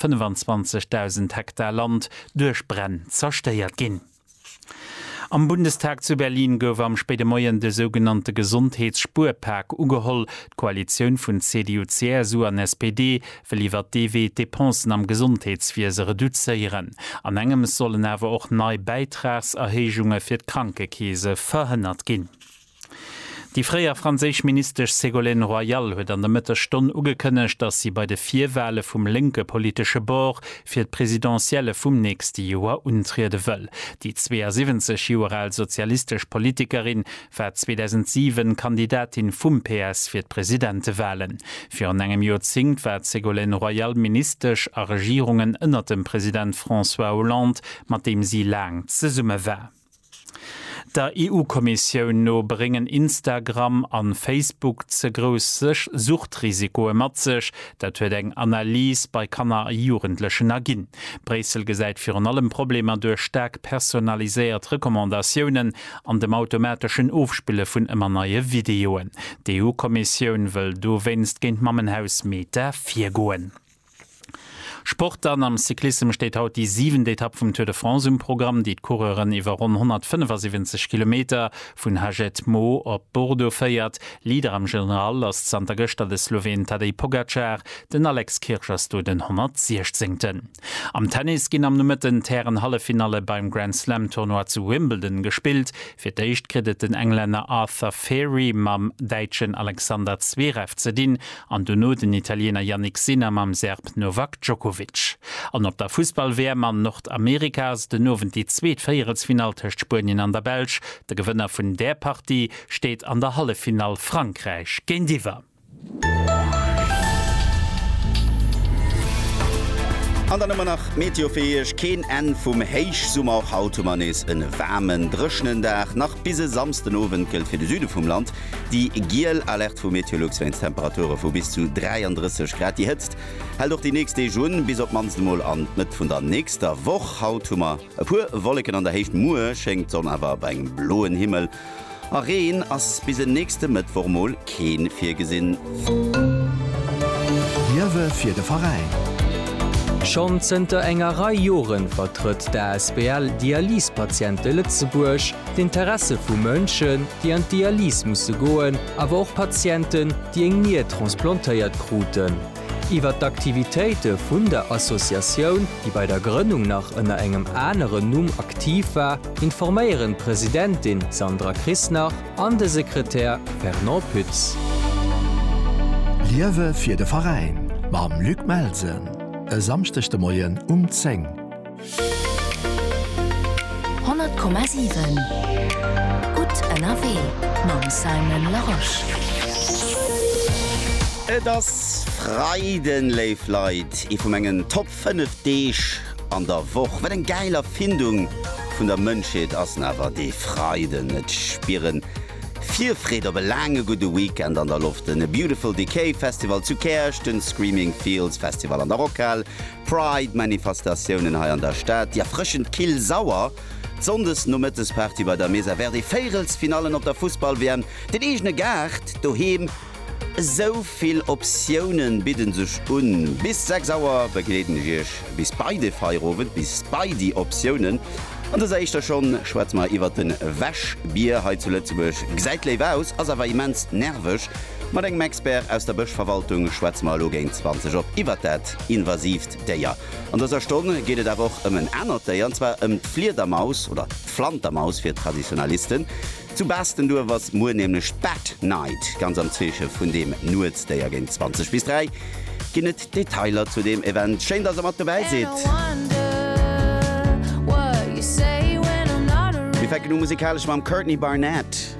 25.000 Hektar Land duerch Bränn zerstéiert ginn. Am Bundestag zu Berlin gouf am spéide Moien de sougenannte Gesondheets-Spuerpak ugeholl. D'Koalitioun vun CDU, CSU an SPD wëll iwwer dee Wee d'Depensen am Gesondheetswiese reduzéieren. An engems sollen awer och nei Bäitragserhéijunge fir d'Krankekeese verhënnert ginn. Déi fréier franséisch Ministesch Ségolène Royal huet an der Mëttesstonn ugekënnegt, datt si bei de Virwale vum lénke politesche Bord fir d'Presidentielle vum nächste Joer untriede wëll. Déi 72 Joer al sozialistesch Politikerin war 2007 Kandidatin vum PS fir d'Presidentewalen. Virun engem Joerzéngt war d'Ségolène Royal Ministesch a Regierungen ënnert dem President François Hollande, mat deem si laang zesumme war. Der EU-Kommissioun no bréngen Instagram an Facebook ze grouss Suchtrisikoe mat sech. Dat huet eng Analys bei Kanner a Jugendlechen erginn. Bréissel gesäit virun allem Problemer duerch staark personaliséiert Recommandatiounen an dem automateschen Ofspille vun ëmmer neie Videoen. D'EU-Kommissioun wëll dowéinst géint d'Mammenhaus Meta virgoen. Sport dann, Am Cyclissem steet haut déi siwent Etapp vum Tour de France um Programm, déi d'Coureuren iwwer ronn 175 Kilometer vun Haget, Meaux op Bordeaux féiert. Leader am General ass zanter gëschter de Sloween Tadej Pogacar, den Alex Kirsch ass do den 116. Am Tennis ginn am Nomëtten d'Hären-Halleffinalle beim Grand-Slam-Tournoi zu Wimbledon gespillt. Fir d'éischt kritt et den Englänner Arthur Feri mam Däitschen Alexander Zverev ze dinn an dono den Italiener Jannik Sinner mam Serb Novak Djokovic. An op der Fussball-WM an Nordamerika ass et den Owend déi zweet Véierelsfinall tëscht Spuenien an der Belsch. De Gewënner vun där Partie steet an der Halleffinall Frankräich géintiwwer. An dann hu mer nach d'Meteo fir Iech, keen Enn vum Héichsummer. Och haut hu mer nees e waarmen, dréchenen Dag. Nach bis e Samsdenowend gëllt fir de Süde vum Land déi giel Alerte vu Meteolux wéinst Temperature vu bis zu 33 Grad. Déi Hëtzt hält och déi nächst Deeg un, bis op d'mannst emol an d'Mëtt vun der nächster Woch. Haut hu mer e puer Wolleken an der Héicht, muer schéngt d'Sonn awer bei engem bloen Himmel. A Reen ass bis en nächste Mëttwoch mol keen virgesinn. D'Ierwe fir de Veräin. Schonn zënter enger Rei Jore vertrëtt d'ASBL Dialysepatiente Lëtzebuerg d'Interesse vu Mënschen, déi an d'Dialyse musse goen, awer och Patienten, déi eng Nier transplantéiert kruten. Iwwer d'Aktivitéite vun der Associatioun, déi bei der Grënnung nach ënner engem aneren Numm aktiv war, informéieren d'Presidentin Sandra Krisnach an de Sekretär Fernand Pütz. Liewe fir de Veräin mam Luc Melsen e Samschdeg de Moien um 10. 100,7 Gutt ënnerwee mam Simon Larosche. Et ass Freiden, léif Leit, ee vu mengen Top 5 Deeg an der Woch. Wat eng gäil Erfindung vun der Mënschheet ass en awer dee Freiden! Et spieren Virfreed op e laange gudde Weekend an der Loft, den Beautiful Decay Festival zu Käerch, den Screaming Fields Festival an der Rockhal, Pride-Manifestatiounen hei an der Stad, déi erfrëschend kill sauer Sonndesnomëttesparty bei der Mesa Verde, Véirelsfinallen op der Fussball-WM, den eegene Gaart doheem, esou vill Optiounen bidden sech un. Bis 6 Auer begleeden ech Iech bis bei de Feierowend, bis bei déi Optiounen. An dëser éischter Schonn schwätze mer iwwert den Wäschbier hei zu Lëtzebuerg. Gesäit léif aus, ass awer immens nerveg. Mat engem Expert aus der Bëschverwaltung schwätze mer elo géint 20 op iwwert dat. invasiivt Déier. An dëser Stonn geet et awer och ëm en anert Déier, an zwar ëm d'Fliedermaus, oder d'Flantermaus fir d'Traditionalisten. Zu Baastenduerf ass muer nämlech d'Bat Night, ganz am Zeeche vun deem Nuetsdéier. Géint 20 bis 3 ginn et Detailer zu deem Event. Schéin, dass der mat dobäi sidd! Mir fänken u musikalesch mam Courtney Barnett.